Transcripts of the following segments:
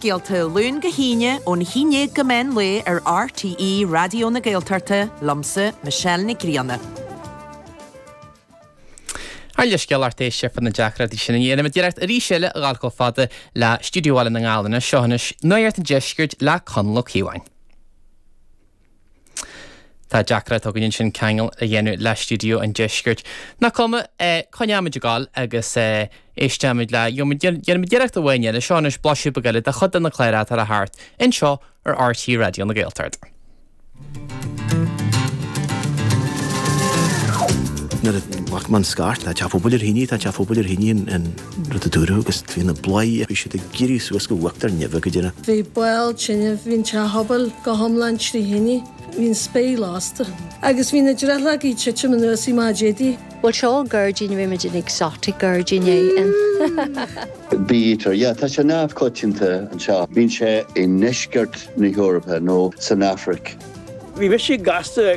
scéalta Luan go hAoine ón haon déag go meán lae ar RTÉ Raidió na Gaeltachta, liomsa, Michelle Nic Grianna. Ár leithscéal a lucht éisteachta fá na deacrachtaí sin dhéanfaimid iarracht arís eile a dhul chomh fada le Stiúideo Bhaile na nGall anois seo anois, Nuacht an Deiscirt le Conall Ó Cíobháin. Tá deacracht againn ansin ceangal a dhéanamh le stiúideo an deiscirt. Nach cuma, coinneoimid ag dul agus éisteoimid le, dhéanfaimid iarracht amháin eile, seo anois, blaiseadh beag eile de chuid de na cláir atá le theacht anseo ar RTÉ Raidió na Gaeltachta. Nuair a bheadh mé an scairt, tá teach an phobail ar thine, tá teach an phobail ar thine in. rud a dúradh agus bhí na bladhairí, bhí siad ag éirí suas go huachtar neimhe go díreach. Bhí baol tine, bhí an teach pobail go hiomlán trí thine, bhí an spéir lasta agus bhí na drithleogaí ag titim anuas i Maigh Déadaigh. Bhuel, seo gairdín, rimed an exotic gairdín éan. Bee-eater, yeah, tá sé neamhchoitianta anseo. Bíonn sé i ndeisceart na hEorpa nó san Afraic. Bhí mise gasta.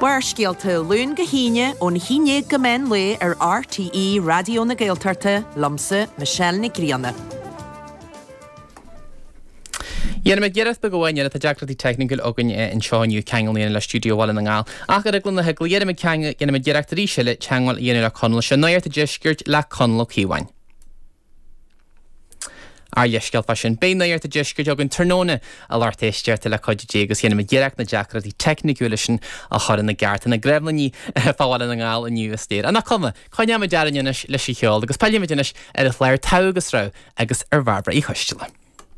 Barrscéalta, Luan go hAoine, ón haon déag go meán lae ar RTÉ Raidió na Gaeltachta, liomsa, Michelle Nic Grianna. Dhéanfaimid iarracht beag amháin dhéanamh, tá deacrachtaí teicniúil againn anseo inniu ceangal a dhéanamh le Stiúideo Bhaile na nGall. Ach ar eagla na heagla, dhéanfaimid ceang, dhéanfaimid iarracht arís eile teangmháil a dhéanamh le Conall. Seo Nuacht an Deiscirt le Conall Ó Cíobháin. Ár leithscéal fá sin, beidh Nuacht an Deiscirt againn tráthnóna a lucht éisteachta le cuidiú Dé agus dhéanfaimid iarracht na deacrachtaí teicniúla sin a chur ina gceart, tá na gremlíní fá Bhaile na nGall inniu is léir. Nach cuma? Coinneoimid orainn anois leis an cheol agus pillfimid anois ar an chlár Togha agus Rogha agus ar Bhairbre Uí Choisteala.